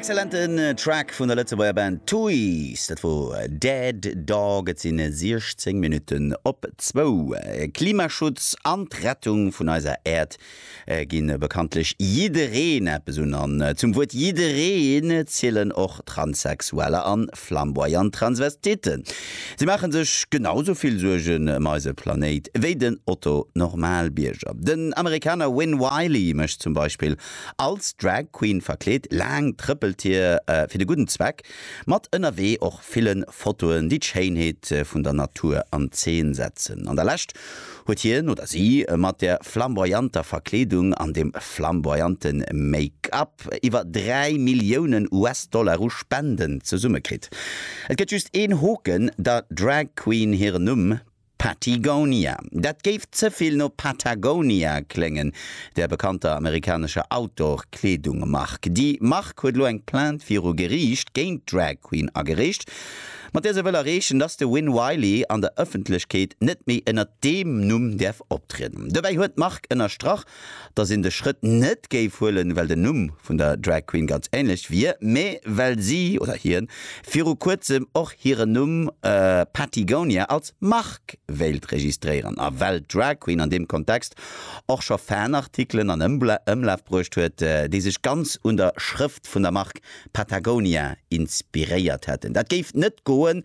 Excellenten Track vun der Lëtzebuerger Band Tuys, dat wor Dead Dog. Et sinn 16 Minutten op zwou. Klimaschutz an d'Rettung vun eiser Äerd gi bekanntlech jiddereen eppes un an zum Wuert jiddereen zielen och Transsexueller an flamboyant Transvestiten. Si maache sech genau sou vill Suergen ëm eise Planéit wéi den Otto Normalbierger. Den Amerikaner Win Wylie mécht zum Beispill, als Drag Queen verkleet, laang trëppelt hie fir de gudden Zweck, mat ënnerwee och ville Fotoen, déi d'Schéinheet vun der Natur an Zeen setzen. An der Lescht huet hien oder si mat der flamboyanter Verkleedung an dem flamboyante Make-up, iwwer 3 Milliounen US-Dollar u Spenden zesumme kritt. Et gëtt just een Hoken, der Drag Queen hiren Numm, Pattygonia. Dat géif ze vill no Patagonia kléngen, der bekannter amerikanescher Outdoor-Kleedung-Mark. Déi Mark huet elo eng Plainte viru Geriicht géint d'Drag Queen agereecht, mat der se wëll erreechen, dass de Win Wylie an der Ëffentlechkeet net méi ënnert deem Numm däerf optrieden. Dobäi huet d'Mark ënnerstrach, dass een de Schrëtt net géif huelen, well den Numm vun der Drag Queen ganz ähnlech wier, mä well si, oder hien, viru kuerzem och hiren Numm Patagonia als Mark wéilt registréieren a well d'Drag Queen an deem Kontext och scho Fanartikelen an Ëmlaf bruecht huet, déi sech ganz un der Schrëft vun der Mark Patagonia inspiréiert hätten. Dat géif net goen.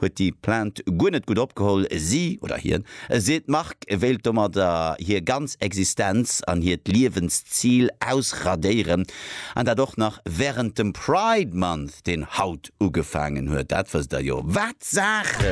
huet déi Plainte guer net gutt opgeholl. Si, oder hien, seet, d'Mark wéilt domadder hir ganz Existenz an hiert Liewenszil ausradéieren, an dat och nach wärend dem Pride Month, deen haut ugefaangen huet. Dat wësst Der jo. Wat Saachen!